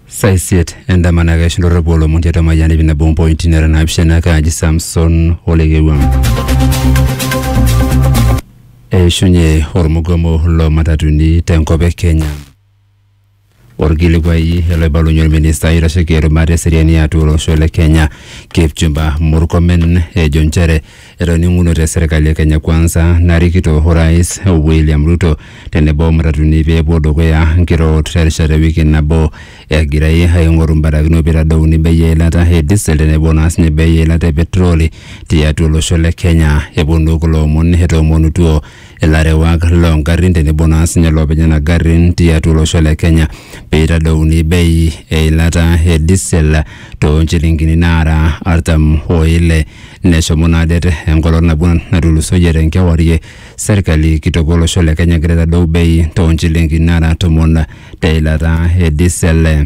saa isiet endama naa keishu ndorropu olomon tiatua Mayian iip nabo ompointi nara naapishana kaaji Samson Olekewang. Eishunye ormugomo loo matatuni tenkop e Kenya. Orkilikuai oloibalunye orministai oitasheki erubata eseriani atua olosho le Kenya Kipchumba Murkomen ejo nchere Etoning'unote serkali e Kenya Kwanza narikito Orais William Ruto tenebo o matatuni pee epuo dukuya nkirorot terishata e wiki nabo egirai aing'oru mbarakinot peitadouni bei eilata e diesel tenebo naa sinye bei eilata e petroli tiatua olosho le Kenya. Eponu kulo omon etoomonutuo ilarewak loo ngarrin tenebo naa sinye loopeny nena garrin tiatua olosho le Kenya peitadouni bei eilata e diesel too nchilingini naara artam o ile neshomo naa det enkolong nabo natulusoyie tenkewarie serkali kitok olosho le Kenya egira aitadou bei too nchilingini naara tomon te ilata e diesel.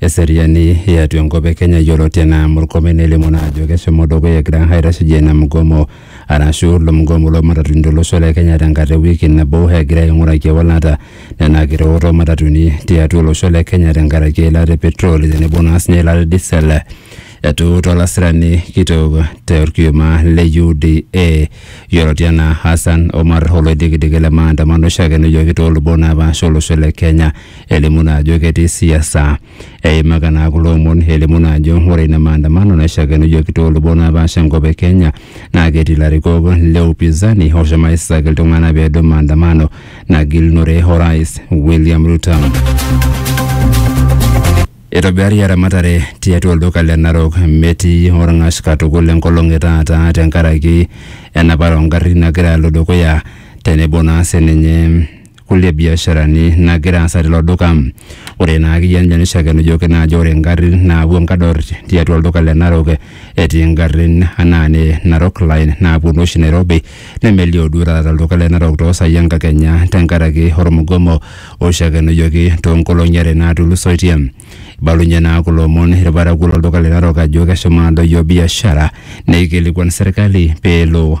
Eseriani e atua enkop e Kenya yioloti anaa Murkomen nelimu naa ajo keshomo dukuya egira aitasheyie ina mgomo arashu ilo mgomo loo matatuni to losho le Kenya tenkata e wiki nabo egira aing'uraki ewalata nena kiteot oo matatuni tiatua olosho le Kenya tenkaraki eilata e petroli tenebo naa sinye eilata e diesel. Etuuta olasirani kitok te orkioma le UDA yioloti anaa Hassan Omar oloidikidiki le maandamano oishakenuyoki too lubot napaasha o losho le Kenya elimu naa ajo ketii siasa. Eimaka naa kulo omon elimu naa ajo ore ina maandamano naishakenujoki toolubot naapaasha enkop e Kenya naa ketii ilarikok le upinzani oshomo aisisaki iltung'ana pee edou maandamano nagilunore orais William Ruto. Eitobirari eramatare tiatua olduka le Narok metii olng'ash katukul enkolong e taata tenkaraki enapare oo ngarrin nagira alo dukuya tenebo naa sininye kulie biasharani nagira aasa tilo duka. Ore ina kijanjani shakenujoki naa ajo ore ngarrin naapuo nkador tiatua olduka le Narok etii ngarrin anaa ne Narok Line naaponu oshi Nairobi nemelio duo taata tolduka le Narok toosai enkakenya tenkaraki ormugomo oishakenujoki toonkolong'i are naatulusoitie. Eibalunye naa kulo omon irparakuo lolduka le Narok ajo keshomo adoyio biashara neikilikuan serkali peelo